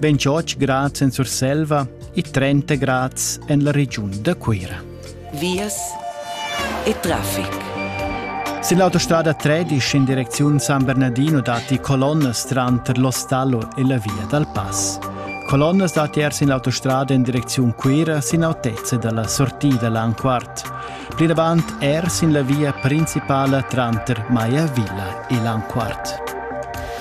28 grad en Surselva e 30 grad en la regiun da Cuira. Vias e traffic. Sin l'autostrada 13 in direziun San Bernardino datti colonnas tranter l'Ostallo e la via dal Pass. Colonnas datti er sin l'autostrada in direziun Cuira sin autezza dalla sortida Lanquart. Plinavant er sin la via principala tranter Maiavilla e Lanquart.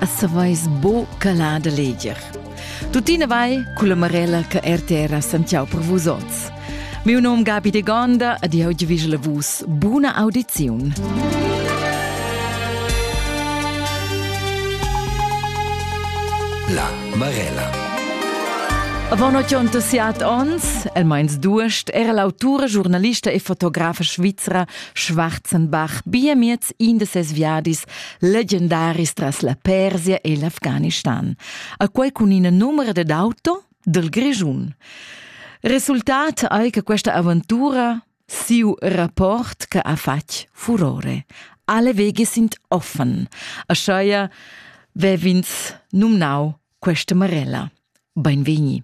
a saveis bo calà da leger. Tuttina vai culla Marella che RTR a Santiago per vus oz. Miu nom Gabi de Gonda ed io ti vis la vus. Buna audiziun. La Marella. Avant 87 ons, el meins duest, era l'autura, giornalista e fotografa svizra Schwarzenbach bia miez in de ses viadis legendaris tras la Persia e l'Afghanistan. A quei cun ina numera ded auto del Grischun. Resultat ei che questa avventura siu rapport che ha fatg furore. Alle wege sind offen. Aschaia vevins numnau questa Marella. Beinvegni.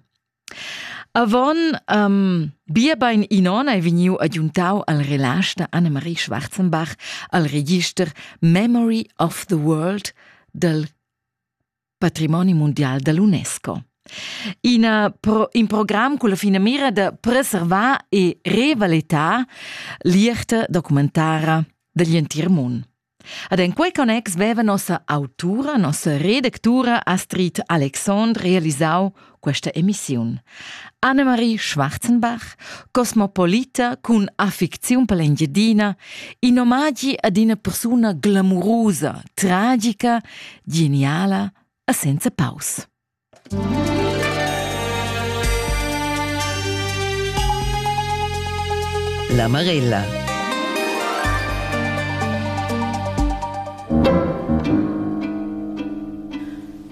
Avon um, bia bein in on ei vegniu agiuntau al relasch da Annemarie Schwarzenbach al register Memory of the World dal patrimoni mundial dall'UNESCO. Ina pro, in program con la finamira da preservar e revalettar l'ierta documentara dagli entir mund. Ad en quei connex veva nossa autura, nossa redactura Astrid Alexandre realisau questa emissiun. Annemarie Schwarzenbach, cosmopolita cun affecziun per l'Engiadina, in omagi ad una persona glamurosa, tragica, geniala e senza paus. La Marella.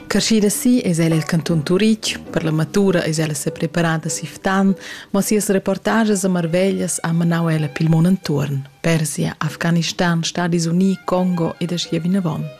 Carschida si es ella il canton Turich, per la matura es ella se preparada siftan, ma sias reportages a Marveglias ha manau ella pil mon entuorn, Persia, Afghanistan, Stadis Uni, Congo ed aschia vinavon.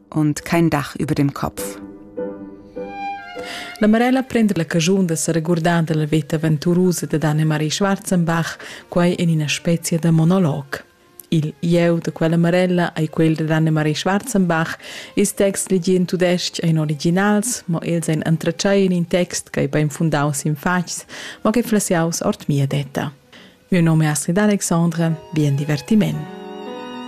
und kein Dach über dem Kopf. La Marella prende la cagiun da seregurdar dalla veta aventurusa dad Anne-Marie Schwarzenbach, quai en ina spezia da monolog. Il ieu da quella Marella ei quel da Anne-Marie Schwarzenbach, ils texts legì in tudestg ein originals, mo els ein entratschai in in text che ei bein fundaus in fatgs, ma che flessiaus ord mia detta. Mio nome è Astrid Alexandre, bien divertiment.